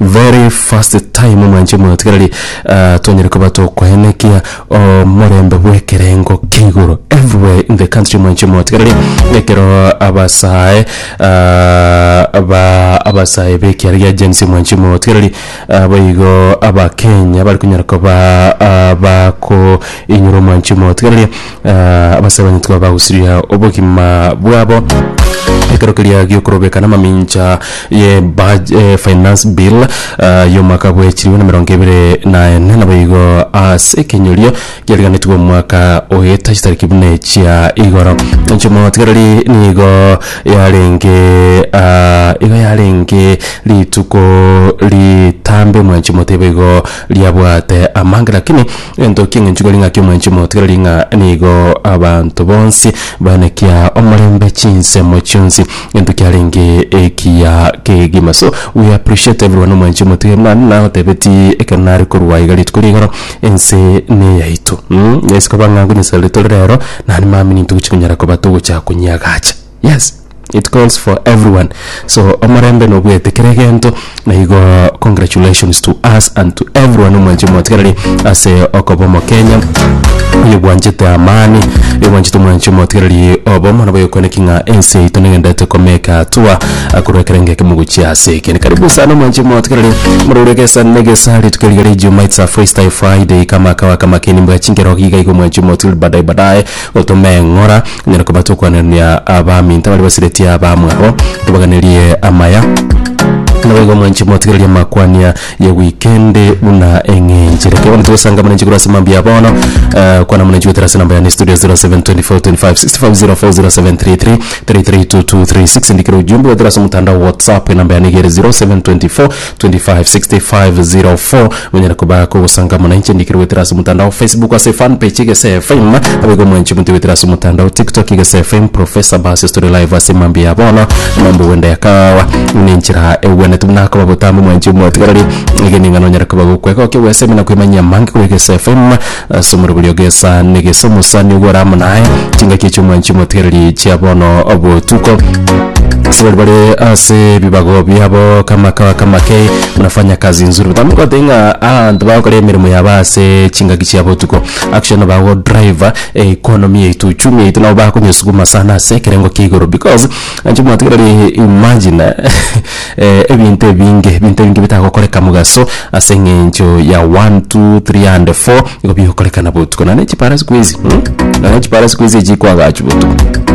Very first time mwanche motigereri twanyare koba tokoenekia omorembe bw'ekerengo kia igoro everywhere in the country mwanche motigereri ekero abasae ba abasae b'ekiara gia Gen Z mwanche motigereri boigo Abakenya bari konyara koba bakoinyora mwanche motigereri. Ah, abasabani tikoba bagusiria obogima bwabo ekero keria giokorobeka namamincha ye baj- eh, finance bill ah, yomwaka bwechiribu na mirongo ebere na ene nabo igo ase ekenyorio giariganetwe omwaka oeta chitariki buna chia igoro enchomotigereri nigo yarenge ah, igo yarenge rituko ritambe mwanchi moteba igo riabwate amanga lakini Gento king'enchu kore ng'aki omwanchi omotegereri ng'a nigo abanto bonsi banakia omorembe chinsemo chionsi gento kiarenge ekiya kegima so we appreciate everyone omwanchi omotegereri naende nagotebeti ekero nare korwa iga rituko ria igoro ense neyaito mm gese koba ng'a nkonyesaria rirotoria rero naende mambia ninto gochi konyara koba togocha konyeagacha. yes it calls for everyone so omorembe nobwete kera egento na igo congratulations to us and to everyone omwanche omotigereri ase okoba omokenya oyo bwanchete amani oyo bwanchete omwanche omotigereri obo mana boyokwaneki ng'a ense yaito negendete komeka atua akorwa ekero engeke mogochia ase ekene karibu sana omwanche omotigereri morore gesa negesa rituko riga ria ijuma it's a freestyle friday kama kawa kama keni mbwa chinkero iga iga omwanche omotigereri badaye badaye Otomeng'ora, nyare koba tokwanania abaminto baria basiretie abamwabo, tobaganerie amaya, naboigo mwanche motigererie amakwania ya wikendi buna eng'enchire. Kebono togosanga muna nchiguru ase mambia bono, eh, kwana muna nchigotera ase namba yane studio 072425650733 332236 ndikira ujumbe wetera ase omotandao wa WhatsApp enamba yane igere 0724 256504 monyare koba kogosanga muna inche ndikire goetera ase omotandao facebook ase fan page egese fm abaigo mwanche monto goetera ase omotandao tiktok egese fm professor basis tore live ase mambia ya bono mambo gwenda yakawa ne enchera egwenetu buna akoba botambe mwanche mwatigareri egeni ng'a nonyare koba gokwega oke gwesemi na kwemanyia amange kore egese fm Ase omorero oria ogesa negesa omosani oyo ore amo naye, chingaki chi'omwanchi omotigereri chia bono botuko. Ase baria bare ase ebibago biabo kama kawa kama kei mnafanya kazi nzuri but amo ngote ng'a abanto bagokora emeremo yabo ase chingaki chia botuko actually nigo bago drive economy yaito uchumi yaito nabo bakonyesukuma sana ase ekerengo kia igoro because anche omotigereri imagine ebinto ebinge, ebinto ebinge bitagokoreka mogaso ase eng'encho ya one, two, three and four, nigo bigokorekana botuko. Nonya na echiparasi kwezi mh, nonya na echiparasi kwezi echi kwagachwa botuko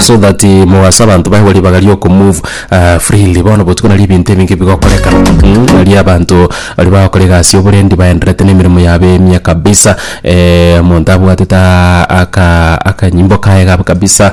so that mogaso abanto baye ribaga riokomove freely. Bono botuko nari ebinto ebinge bigokorekana mh, nari abanto baria bagokora egasi ya oborendi baenderete na emeremo yabo emya kabisa omonto abwatete aka akanyimbo kaye kabe kabisa.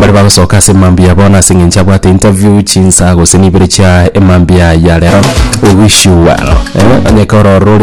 Baria bagosoka ase mambia bono ase engencho abwate interview chinsa gose nibere chia emambia ya rero. We wish you well. Eh, onye koro ororo ore